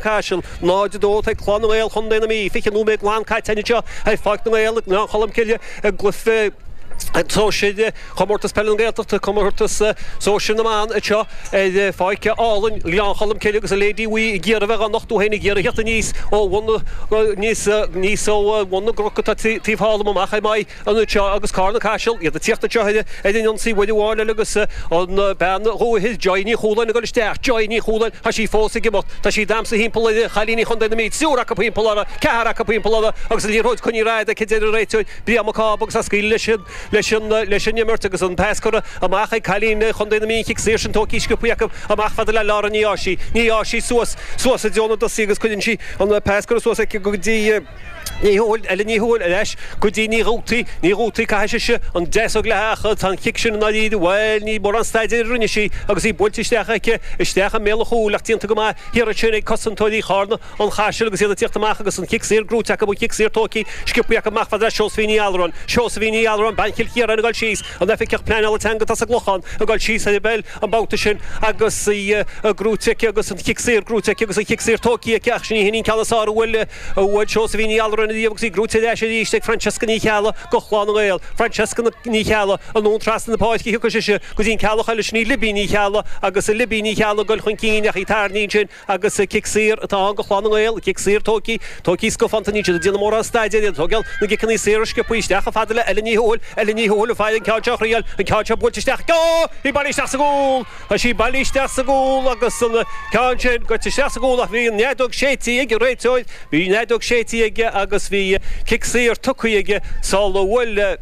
Caiseal, 0, 2 ag Clann na nGael Chontae na Mí 20 nóiméad glan caite anseo ar Pháirc na nGael i nGleann Cholm Cille i gcluiche sóisir Chomórtas Peile na Gaeltachta, comórtas sóisir na mban anseo ar pháirc álainn Ghleann Cholm Cille agus an leaid buí ag iarraidh a bheith á nochtú féin ag iarraidh theacht aníos ó bhun na ó bhun na gcnoc atá taobh thall amach ar m'aghaidh an oiread seo agus Carna Caiseal, iad ag tíocht anseo ar an ionsaí uair amháin eile agus an bean dhúiche Joy Ní Chualáin ag dul isteach. Joy Ní Chualáin, tá sí fós ag imeacht. Tá sí ag damhsa thimpeall ar chailíní Chondae na Mí, triúr acu thimpeall uirthi, ceathrar acu thimpeall uirthi agus an liathróid coinnithe rófhada aici deir an réiteoir, Brian Mac Cába agus é ag scaoileadh leis an imirt agus an pas curtha amach ag cailín Chondae na Mí, an cic saor sin tógtha sciobtha acu amach a fhad le Lára Ní Áisí. Ní Áisí suas, suas i dtreo na dtosaí agus cuireann sí an pas curtha suas aici go dtí. Ní Thuathail, Ellen Ní Thuathail, leis, go dtí, Ní Dhubhthaigh, Ní Dhubhthaigh, caithfidh sise an deis a ghlacadh ach tá an chic sin i ndáiríre, bhuel, ní mórán staidéir a rinne sí agus í buailte isteach aici, isteach i mbéal an chúil ach déanta go maith thiar ansin ag cosantóirí Charna, An Chaisil agus iad ag tíocht amach agus an chic saor gnóite acu, an chic saor tóigthe sciobtha acu amach a fhad le Seosaimhín Uí Alluráin, Seosaimhín Uí Alluráin, bean Chill Chiaráin ag dul síos, an tOifigeach Pleanála Teanga atá sa gClochán ag dul síos ar a béal an babhta sin agus í gnóite aici agus an chic saor gnóite aici agus an chic saor tóigthe aici ach ní hin an ceann is fearr a bhuail Bhuail Seosaimhín Ní Alluráin riamh agus í gnóite ar ais arís ag Francesca Ní Cheallaigh, go Chlann na nGael. Francesca Ní Cheallaigh, anonn trasna na páirce thiocfadh sise go dtí an Ceallach eile, sin í Libby Ní Cheallaigh agus Libby Ní Cheallaigh ag goil chun cinn ach í tarraingthe ansin agus cic saor atá ann go Chlann na nGael, cic saor tógtha, tógtha scafánta níl siad ag déanamh mórán staidéir, iad ag tógáil na gciceanna saor sciobtha isteach, a fhad le Ellen Ní Thuathail, Ellen Ní Thuathail an file, an ceann seo a thriail, an ceann seo buailte isteach go, í bailí isteach sa gcúl! Tá sí bailí isteach sa gcúl agus an ceann sin goite isteach sa gcúl ach bhí an fheadóg séidtí ag an réiteoir, bhí an fheadóg séidtí aige agus bhí cic saor tugthaí aige sular bhuail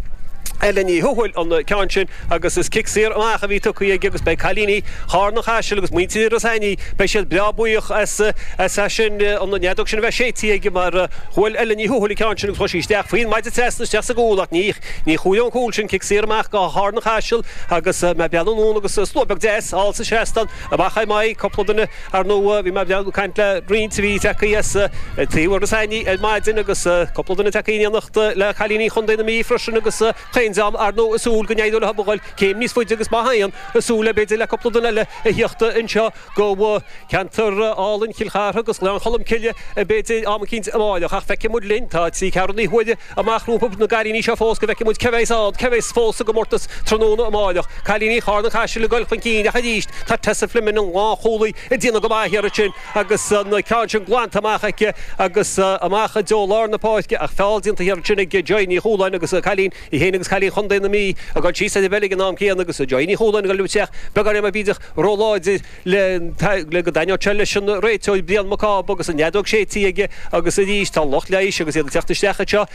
Ellen Ní Thuathail an ceann sin agus is cic saor amach a bhí tugthaí aige agus beidh cailíní Charna Caiseal agus muintir Iorrais Aithnigh, beidh siad breá buíoch as sin, an fheadóg sin a bheith séidtí aige mar bhuail Ellen Ní Thuathail an ceann sin agus chuaigh sí isteach faoin maide trasna isteach sa gcúl ach ní Ní chuaigh an cúl sin, cic saor amach go Charna Caiseal agus mé ag breathnú anonn agus slua beag deas thall sa seastán amach ar m'aghaidh, cúpla duine, ar ndóigh. Bhí mé beag ag caint le roinnt a bhí tagthaí as taobh thoir na Sionainne ar maidin agus cúpla duine tagthaí in éineacht le cailíní Chondae na Mí freisin agus chaon dream ar ndóigh ag súil go n-éireodh leothub a ghoil céim níos faide agus ba mhaith an súil é b'fhéidir le cúpla duine eile a thíocht anseo. go ceantar álainn Chill Chartha agus go Gleann Cholm Cille, b'fhéidir am éicínt amárach, ach feicfidh muid linn, tá trí cheathrú na huaire amach rompu na cailíní seo fós go bhfeicfidh muid cé bheidh's ann, cé bheidh's fós sa gcomórtas tráthnóna amárach, cailíní Charna Caiseal ag goil chun cinn ach arís tá Tessa Fleming an lánchúlaí ag déanamh go maith thiar ansin agus an ceann sin glanta amach aici agus amach i dtreo lár na páirce ach feall déanta thiar ansin ag Joy Ní Chualáin agus an cailín Í féin agus cailín Chondae na Mí ag dul síos ar an bpeil ag an am céanna agus Joy Ní Chualáin ag dul isteach beagáinín bídeach ró láidir le go dtaitneodh seo leis an réiteoir Brian Mac Cába agus an fheadóg séití aige agus arís tá lucht leighis agus iad ag teacht isteach anseo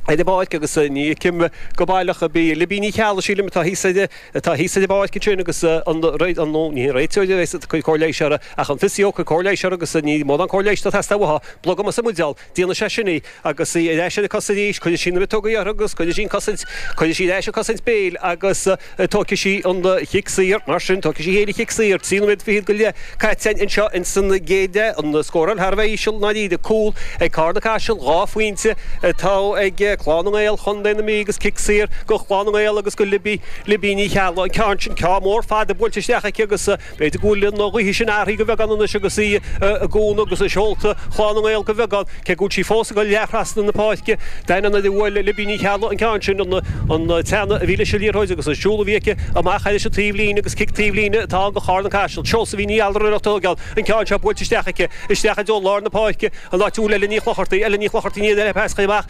ar an bpáirc agus ní fheicim go baileach ar bith Libby Ní Cheallaigh sílim atá thíos ar atá thíos ar an bpáirc ansin agus an ó ní hé an réiteoir a bheas ag cur cóir leighis orthu ach an physio ag cur cóir leighis orthu agus ní mórán cóir leighis atá ag teastáil uaithi. Blogam as an mbuidéal. Déanann sé sin í agus í ar ais ar a cosa arís. Cuireann sí na miotógaí uirthi agus cuireann sí an cosaint. Cuireann sí ar ais an cosaint béil agus tóigfidh sí an chic saor. Mar sin, tóigfidh sí féin an chic saor. Trí nóiméad fichead go leith caite anseo ins an gcéad leath. An scóráil thar a bheith íseal i ndáiríre. Cúl ag Carna Caiseal. Dhá phointe atá ag Clann na nGael, Chontae na Mí agus cic saor go Clann na nGael agus go Libby, Libby Ní Cheallaigh an ceann sin. Ceann mór fada buailte isteach aici agus. B'fhéidir go bhfuil an ghaoth sin athraithe go bheagán anois agus í i gcúnamh agus i seolta Chlann na nGael go bheagán, cé go bhfuil sí fós ag teacht trasna na páirce. Ní éireoidh le Libby Ní Cheallaigh an ceann sin, an teannadh a bhí leis an liathróid agus an siúl a bhí aici amach ar an taobh líne agus cic taobh líne atá ann go Carna Caiseal. Seosaimhín Ní Allraireach a thóigeann an ceann seo buailte isteach aici, isteach i dtreo lár na páirce, an áit a bhfuil Ellen Ní Chlochartaigh, Ellen Ní Chlochartaigh Ní Fhinneadha le pas chuici amach,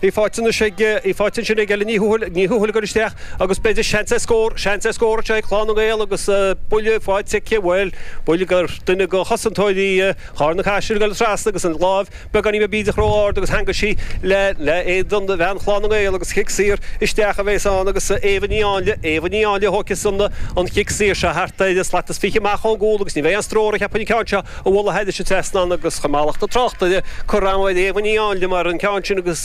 Peil faighte anois ag, peil faighte ansin ag Ellen Ní Thuathail, Ní Thuathail ag dul isteach agus b'fhéidir seans ar scór, seans ar scór anseo ag Clann na nGael agus buille faighte aici, bhuel, buille gur, duine de chosantóirí Charna Caiseal ag dul trasna agus an láimh beagáinín beag bídeach ró ard agus theangaigh sí le, le éadan bhean Chlann na nGael agus cic saor isteach a bhéas ann agus Éabha Ní Áinle, Éabha Ní Áinle a thóigfeas an, an chic saor seo thart ar slat is fiche amach ón gcúl agus ní bheidh aon stró uirthi cheapfainn an ceann seo. a mhol a thaighde sa trasnán agus sa mhallacht tráchta. Cuireadh an-chuid léamhainní ann, liom ar an gceann sin agus.